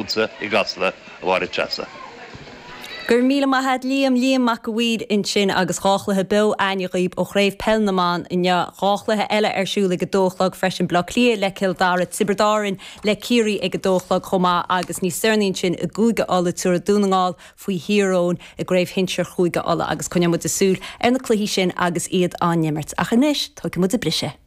Fútsa i gCasla, a Mháire Treasa. Go raibh míle maith agat Liam, Liam Mac a' Mhaoir ansin agus dhá chluiche beo againn dhaoib ó Chraobh Peil na mBan inniu. Dhá chluiche eile ar siúl ag a dó a chlog freisin, Bleá Cliath le Cill Dara, Tiobraid Árainn le Ciarraí ag a dó a chlog chomh maith agus níos deireanaí ansin i gCúige Uladh tiúrfaidh Dún na nGall faoi Thír Eoghain i gCraobh Shinsir Chúige Uladh agus coinneoidh muide súil ar na cluichí sin agus iad á n-imirt. Ach anois tógfaidh muide briseadh!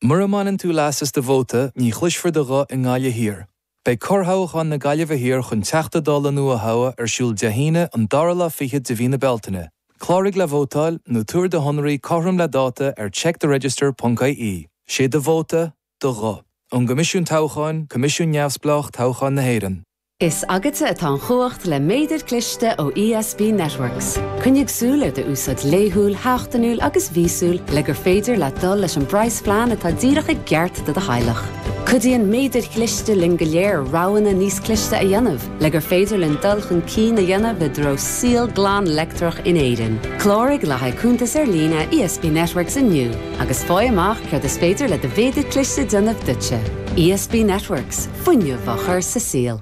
Mura mbaineann tú leas as do vóta, ní chloisfear do ghuth i nGaillimh Thiar. Beidh corrthoghchán na Gaillimhe Thiar chun Teachta Dála nua a thoghadh ar siúl Dé hAoine an dara lá fichead de mhí na Bealtaine. Cláraigh le vótáil, nó tabhair do shonraí cothrom le dáta ar checktheregister.ie. Sé do vóta, do ghuth. Ón gCoimisiún Toghcháin, Coimisiún neamhspleách toghcháin na hÉireann. Is agatsa atá an chumhacht le méadar cliste ó ESB Networks. Coinnigh súil ar do úsáid laethúil, sheachtainiúil agus mhíosúil le gur féidir leat dul leis an bpraghas-phlean atá díreach i gceart do do theaghlach. Cuidíonn méadair chliste linn go léir roghanna níos cliste a dhéanamh le gur féidir linn dul chun cinn a dhéanamh i dtreo saol glan leictreach in Éirinn. Cláraigh le haghaidh cuntas ar líne ESB Networks inniu agus fáigh amach céard is féidir le do mhéadar cliste déanamh duitse. ESB Networks. fuinneamh á chur sa saol.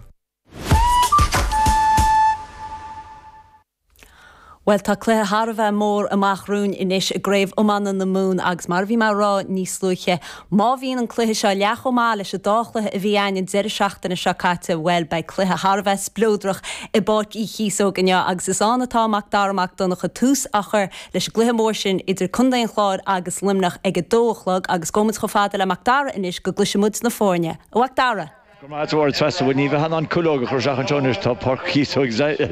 Bhuel, tá cluiche thar a bheith mór amach romhainn anois i gCraobh Iomána na Mumhan agus mar a bhí mé ag rá níos luaithe, má bhíonn an cluiche seo leath chomh maith leis an dá chluiche a bhí againn an deireadh seachtaine seo caite, bhuel, beidh cluiche thar a bheith spleodrach i bPáirc Uí Chíosóg inniu agus is ann atá Macdara Mac Donncha tús á chur leis an gcluiche mór sin idir Contae an Chláir agus Luimneach ag a dó a chlog agus gabhfaidh muid chomh fada le Mac Dara anois go gcloisfidh muid na foirne. A Mhac Dara! Go raibh maith agat a Mháire Treasa bhuel ní bheifeá in ann cuileog a chur isteach anseo anois, tá Páirc Chíosóg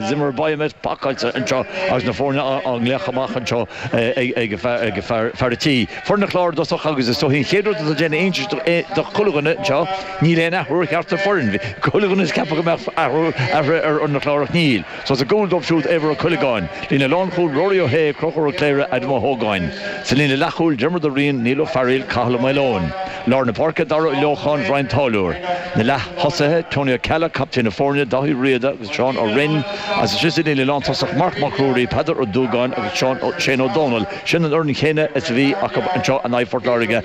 Zimmer Biomet pacáilte anseo agus na foirne á nglaoch amach anseo ag fear an tí. Foireann an Chláir i dtosach agus is dóichí an chéad rud atá ag déanamh iontais do chuile dhuine anseo, níl aon athrú ar cheachtar foireann, bhí chuile dhuine ag ceapadh go mbeadh athruithe ar fhoireann an Chláir ach níl. So sa gcúl dóibh siúd Éibhear Ó Cuileagáin, líne lánchúil, Rory Ó hAodha, Conchúr Ó Cléirigh, Adam Ó hÓgáin. Sa líne leathchúil, Diarmuid Ó Riain, Niall Ó Fearaíl, Cathal Ó Maoileoin. Lár na páirce, Dara Ó Leocháin, Ryan Táilliúr. Na leath-thosaithe, Tony Ó Ceallaigh, captaen na foirne, Dáithí Ó Riada agus Seán Ó Rinn. Agus istigh sa líne lántosach, Marc Mac Ruairí, Peadar Ó Dúgáin agus Seán Ó, Shane Ó Domhnaill. Sin an fhoireann chéanna is a bhí acu anseo in aghaidh Phort Láirge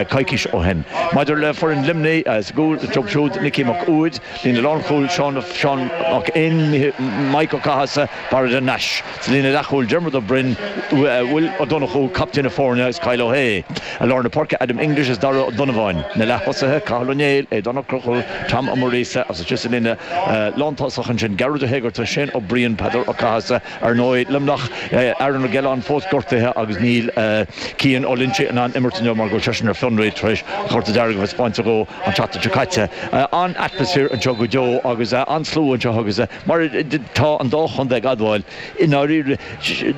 coicís ó shin. Maidir le foireann Luimnigh, sa gcúl dóibh siúd Nicky Mac Uaid, líne lánchúil, Seán Mac Fhinn, Maidhc Ó Cathasaigh, Barra de Nais, sa líne leathchúil, Diarmuid Ó Broin, Will Ó Donnchú, captaen na foirne, agus Kyle Ó hAodha, i lár na páirce, Adam English agus Darragh Ó Donnabháin, na leath-thosaithe, Cathal Ó Néill, Aodán Ó Conchúir, Tom Ó Muiríosa, agus istigh sa líne lántosach ansin, Gearóid Ó hÉigeartaigh, Shane Ó Briain, Peadar Ó Cathasaigh, Ar ndóigh, Luimneach, Aaron Gillane, fós gortaithe agus níl Cian Ó Loinsigh in ann imirt inniu mar go bhfuil seisean ar fionraí tar éis an chárta dearg a bheith spáinte dhó an tseachtain seo caite. An-atmaisféar anseo go deo agus an-slua anseo agus mar tá an dá chontae ag admháil, i ndáiríre,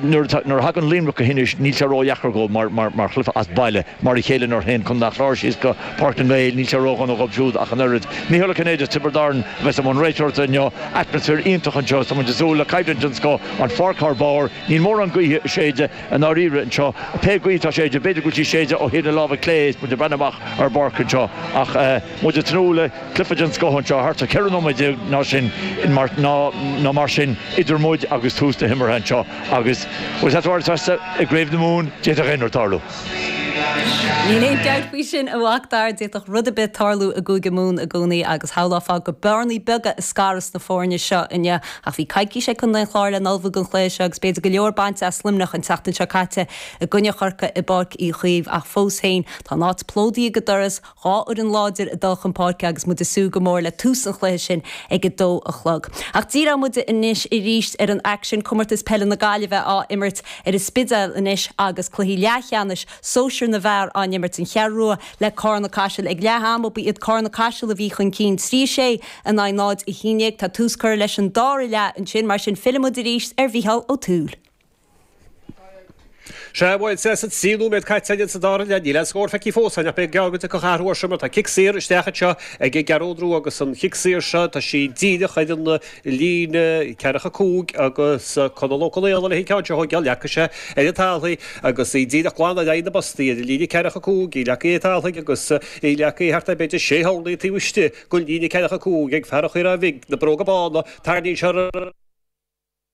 nuair a thagann Luimneach go hInis níl sé ródheacair dhóibh mar chluiche as baile mar a chéile nuair a théann Contae an Chláir síos go Páirc na nGael, níl sé ródhona dhóibh siúd ach an oiread. Micheál Ó Cinnéide as Tiobraid Árann a bheas i mbun réiteoireachta inniu. Atmaisféar iontach anseo is tá muid ag súil le coimhlint den scoth. An pháirc thár barr. Níl mórán gaoithe ag séideadh i ndáiríre anseo. Pé gaoth atá ag séideadh b'fhéidir go bhfuil sí ag séideadh ó thaobh na láimhe clé is muid ag breathnú amach ar an bpáirc anseo. Ach muid ag tnúth le cluife den scoth anseo thart ar 14 nóiméad nó sin nó mar sin idir muid agus tús na himeartha anseo agus bhuel, tá tabhairt festa i gCraobh na Mumhan, d'fhéadfadh aon rud tarlú. Níl aon dabht faoi sin, a Mhacdara. D'fhéadfadh rud ar bith tarlú i gCúige Mumhan i gcónaí agus shamhlófá gurb orlaí beaga a scarfas na foirne seo inniu. Ach bhí coicís ag Contae an Chláir le n-ullmhú don chluiche seo agus b'fhéidir go leor bainte as Luimneach an tseachtain seo caite i gcoinne Chorcaí i bPáirc Uí Chaoimh ach fós féin, tá an áit plódaithe go doras. Dhá fhoireann láidir ag dul chun páirce agus muid ag súil go mór le tús an chluiche sin ag a dó a chlog. Ach díreoidh muid anois arís ar an aicsean, Comórtas Peile na Gaillimhe á imirt ar an Spidéal anois agus cluichí leathcheannais sóisear na bhfear á n-imirt, An Cheathrú Rua le Cárna-Caiseal ag leath ama. Ba iad Cárna-Caiseal a bhí chun cinn trí a sé in aghaidh 0, 11. Tá tús curtha leis an dara leath ansin, mar sin fillfimid arís ar Mhicheál Ó Tuathail. Sea, bhuel, sea, tá trí nóiméad caite againn sa dara leath, níl aon scór feicthe fós againn ach b'fhéidir go dtiocfadh athrú air sin mar tá cic saor isteach anseo ag an gCeathrú Rua agus an cic saor seo, tá sí díreach ar an líne, ceathracha a cúig agus Conal Ó Conaola leis an gceann seo a thógáil. Leagfaidh sé ar an talamh í agus í díreach glan in aghaidh na bpostaí ar an líne, ceathracha a cúig, í leagtha ar an talamh aige agus í leagtha thart ar b'fhéidir sé horlaí taobh istigh den líne, ceathracha a cúig ag fear Dhoire Bhig, na bróga bána, tarraingíonn sé ar an.